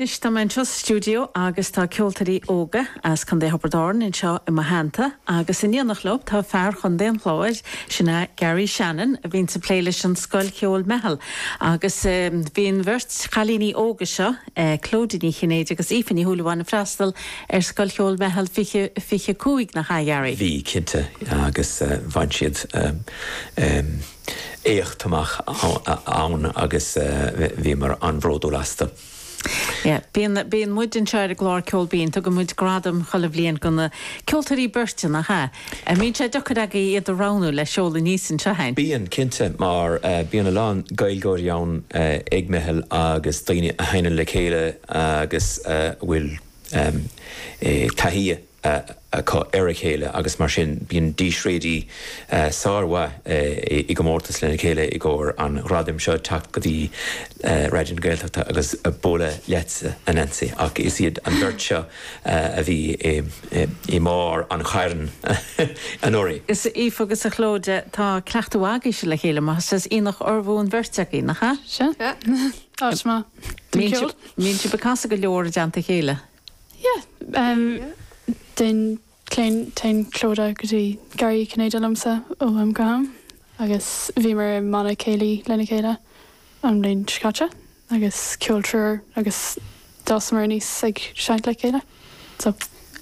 Anois tá mé anseo sa stiúideo agus tá ceoltóirí óga as Contae Thiobraid Árann anseo i mo theannta agus in éineacht leo tá fear Chontae an Chláir, sin é Garry Shannon, a bhíonns ag plé leis an Scoil Cheoil Meitheal agus bhí an bheirt chailíní óga seo, Clodagh Ní Chinnéide agus Aoife Ní Shúilleabháin ag freastal ar Scoil Cheoil Meitheal fiche, fiche a cúig, nach ea Garry? Bhí, cinnte, agus bhain siad éacht amach ann agus bhíomar an-bhródúil astu. Yeah, bíonn muid anseo ar an gclár Ceol Binn, tugann muid gradam chuile bhliain do na ceoltóirí beirte, nach ea? An mbíonn sé deacair agaibh iad a roghnú le seoladh aníos anseo? Bíonn, cinnte, mar bíonn a lán Gaeilgeoirí ann ag Meitheal agus daoine a sheinneann le chéile agus a bhfuil taithí acu ar a chéile agus mar sin bíonn dísréidí sármhaith i gcomórtas lena chéile i gcomhair an ghradaim seo ag teacht go dtí Raidió na Gaeltachta agus bualadh leatsa, a Neansaí. Ach is iad an bheirt seo a bhí i mbarr an chairn anuraidh. Is Aoife agus a Chlodagh, tá cleachtadh agaibhse ar a chéile mar, is as Aonach Urmhumhan an bheirt agaibh, nach ea? Sea, áit maith don cheol. Mbíonn sibh ag casadh go leor i dteannta a chéile. Téann Clodagh go dtí Garraí Cinnéide liomsa ó am go ham agus bhíomar i mbanna céilí lena chéile an bhliain seo caite agus ceol triúir agus d'fhásamar aníos ag seinnt le chéile. So,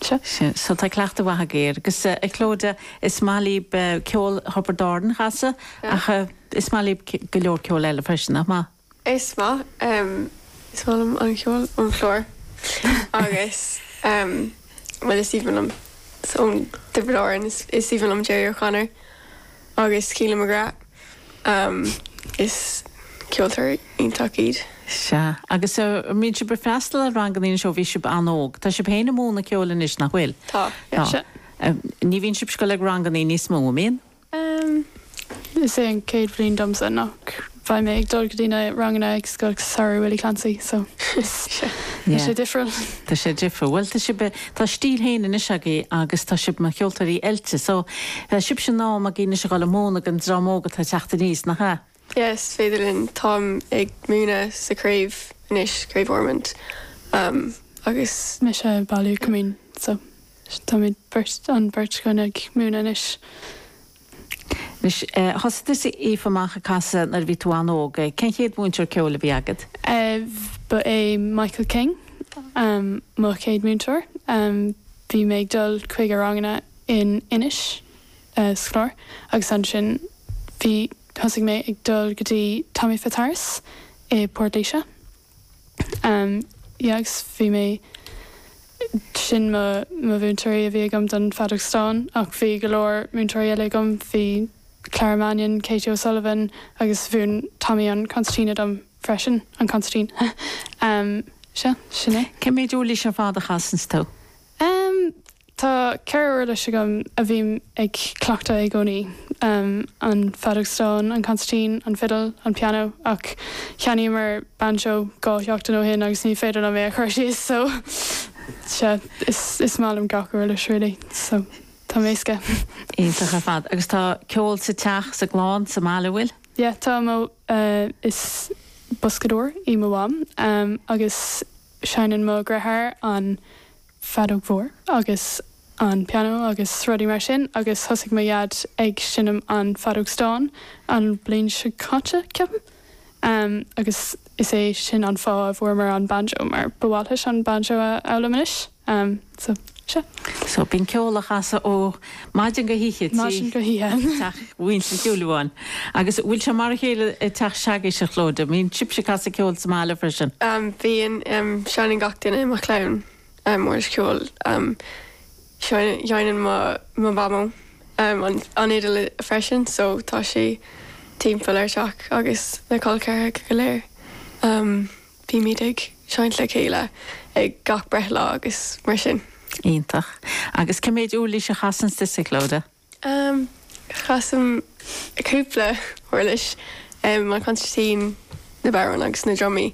seo. So, tá cleachtadh mhaith agaibh air. Agus, a Chlodagh, is maith libh ceol Thiobraid Árann a chasadh ach is maith libh go leor ceol eile freisin, nach maith? Is maith is maith liom an ceol ón Chlár agus, bhuel, is aoibhinn liom, ó Thiobraid Árann, is aoibhinn liom Gerry O'Connor agus Keelan McGrath. Is ceoltóirí iontach iad. Sea. Agus an mbíonn sibh ag freastal ar ranganna anois ó bhí sibh an-óg? Tá sibh féin ag múineadh ceoil anois, nach bhfuil? Tá. Ní bhíonn sibh ag dul ag ranganna níos mó, an mbíonn? Em. is é an chéad bhliain domsa nach mbeidh mé ag dul go dtí na ranganna ag Scoil Samhraidh Willie Clancy so tá Yeah. sé difriúil. Tá sé difriúil. Bhuel, tá sibh, tá stíl féin anois agaibh agus tá sibh mar cheoltóirí oilte so tá sé in am agaibh anois a dhul ag múineadh an dream óg atá ag teacht aníos, nach ea? Yeah, is féidir linn. Táim ag múineadh sa chraobh anois, Craobh Ormond, agus. mise ag Baile Uí Choimín, so táimid beirt, an bheirt againn ag múineadh anois. Anois, thosaigh tusa, Aoife, amach ag casadh nuair a bhí tú an-óg. Cén chéad mhúinteoir ceoil a bhí agat? Ba é Michael King mo chéad múinteoir. Bhí mé ag dul chuig a ranganna in Inis. scláir agus ansin bhí, thosaigh mé ag dul go dtí Tommy Fitzharris i bPort Laoise ehm yeah agus bhí mé, sin mo mhúinteoirí a bhí agam don Feadóg Stáin ach bhí go leor múinteoirí eile agam, bhí Clara Mannion, Katie O'Sullivan agus mhúin Tommy an concertina dom freisin, an consairtín ehm, sea, sin é. Cén méid uirlis ar fad a chasanns tú? Em, Tá ceithre uirlis agam a bhím ag cleachtadh i gcónaí, em, an feadóg stáin, an consairtín, an fidil, an pianó, ach cheannaíomar bainseo dhá sheachtain ó shin agus ní féidir liom é a chur síos, so, sea, is, is maith liom gach uirlis, really, so, tá mé éasca. Iontach ar fad. Agus tá ceol sa teach, sa gclann, sa mbaile, an bhfuil? Yeah, tá, mo, eh, is boscadóir í mo mham, em, agus. Seinneann mo dheartháir an feadóg mhór agus an pianó agus rudaí mar sin agus thosaigh mo dhaid ag seinm an feadóg stáin an bhliain seo caite, ceapaim, agus is é sin an fáth a bhfuaireamar an banjo mar ba mhaith leis an banjo a fhoghlaim anois. So, sea. So, bíonn ceol á chasadh ó mhaidin go hoíche i dteach mhuintir Shúilleabháin. Agus bhfuil sé mar a chéile i dteach s'agaibhse, a Chlóide? An mbíonn sibhse ag casadh ceoil sa mbaile freisin? Bíonn. Seineann gach duine i mo chlann uirlis ceoil. Seineann mo mhamó an fhidil freisin so tá sí timpeall ár teach agus na col ceathracha go léir. Bímid ag seinnt le chéile ag gach breithlá agus mar sin. Iontach. Agus cé mhéid uirlis a chasanns tusa, Clodagh? Ehm, casaim cúpla uirlis, ehm, an consairtín, na bodhráin agus na drumaí.